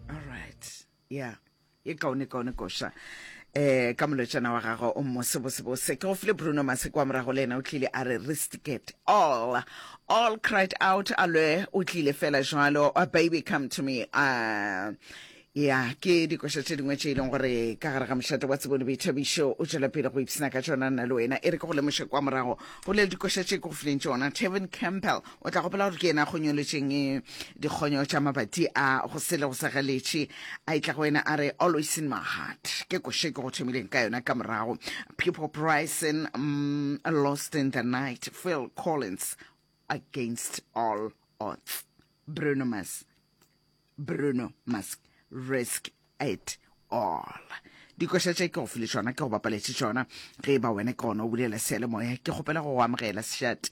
all right yeah e kaone kaone koša eh ka molotšana wa gagwe o mmo sebosebose ke go file bruno maseko wa morago le ena o tlile a re ristiket all all cried out a lwe o tlile fela jalo a baby come to me uh, ya ke dikoša tše dingwe tše e leng gore ka gare ga mošate wa tsebone boithabišo o tšwela pele go ipsena ka tšona nna le wena e re ke go lemoše kwa morago go le dikoša tše ke go fileng tšona tevin campbell O tla gopola gore ke yena a kgonyoletšeng eh, dikgonyo tša mabati a go sele go segeletše a itla go wena a re always in my heart ke koše ke go thomileng ka yona ka morago people pricing um, mm, lost in the night phil collins against all odds bruno mas bruno mas risk it all dikoša tše ke go file tšona ke go bapaletše tšona ge e ba wena ke gona o bulela sealemoya ke kgopela go go amogela sešate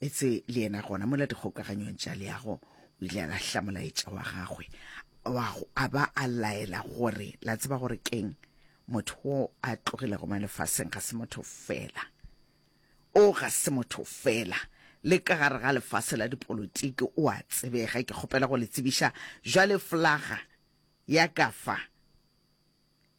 etse le yena gona mola dikgokaganyong tša leago o ile a lahla molaetša wa gagwe a ba a laela gore la tseba gore keng motho wo a tlogilego mo lefaseng ga se motho fela o ga se motho fela le ka gare ga lefase la dipolotiki o a tsebega ke kgopela go le tsebiša jwale flaga ya ka fa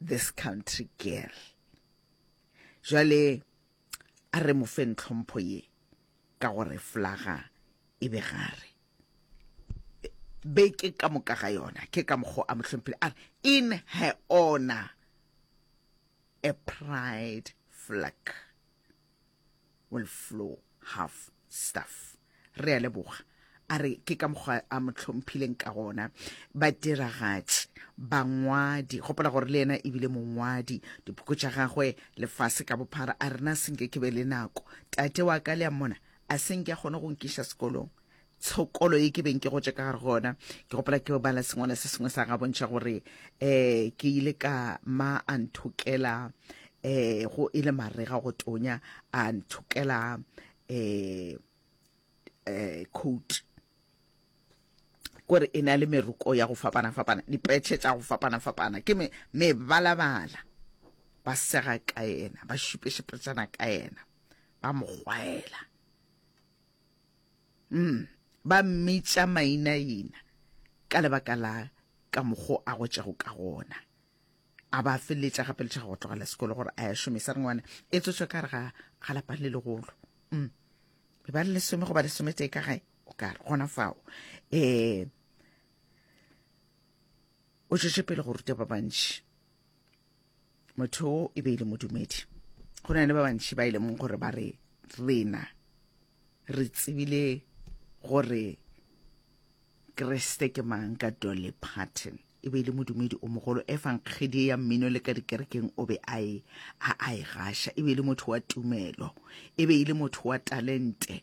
this country girl jwale a re mo fe ntlhompho ye ka gore flaga e be gare be ke ka moka ga yona ke ka mokgo a mo hlomphile a re in her honor a pride flag will flow half stuff re a leboga a re ke ka mokgwa a mo tlhomphileng ka gona badiragatši bangwadi gopola gore le yena ebile mongwadi diphoko tša gagwe lefase ka bophara a rena senke ke be le nako tate wa ka le a mmona a senke a kgone go nkiša sekolong tshokolo ye ke beng ke gotše ka gare go ona ke gopola ke bala sengwala se sengwe sa ga bontšha gore um ke ile ka ma a nthokela um go e le marega go tonya a nthokela um um coat kore e na le meroko ya go fapana-fapana dipetšhe tša go fapana-fapana ke mebalabala ba sega ka yena ba šupešepetšana ka yena ba mogwaela Mm, ba mmitša mainaina ka lebaka la ka mokgo a gotšego ka gona. A ba feleletša gape letšha go tlogela sekolo gore a ya šomisa re ngwana e tsotso ka re ga ga lapang le legolo. Mm. Be ba le lesome go ba lesome tee ka gae o ka re gona fao. Eh o tšwetše pele go ruta ba bantši motho o e be e le modumedi go na le ba bantši ba e leng gore ba re rena re tsebile gore kreste ke mang ka dolly parton e be e le modumedi o mogolo e fang kgedi ya mmino le ka dikerekeng o be a e a e gaša e be e le motho wa tumelo e be e le motho wa talente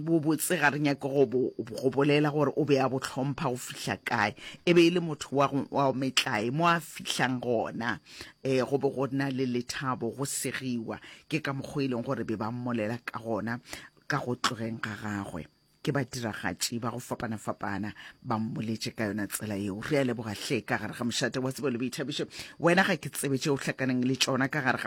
bobotse ga re nyake go bolela gore o be a botlhompha go fihla kae e be e le motho wa wa metlae mo a fihlang gona um go be go nna le lethabo go segiwa ke ka mokgwa e leng gore be ba mmolela ka gona ka go tlogeng ga gagwe ke badiragatši ba go fapana-fapana ba mmoletše ka yona tsela yeo re a leboga hle ka gare ga mošate wa tsebo le boithabišo wena ga ke tsebe tše o hlakaneng le tšona ka gare ga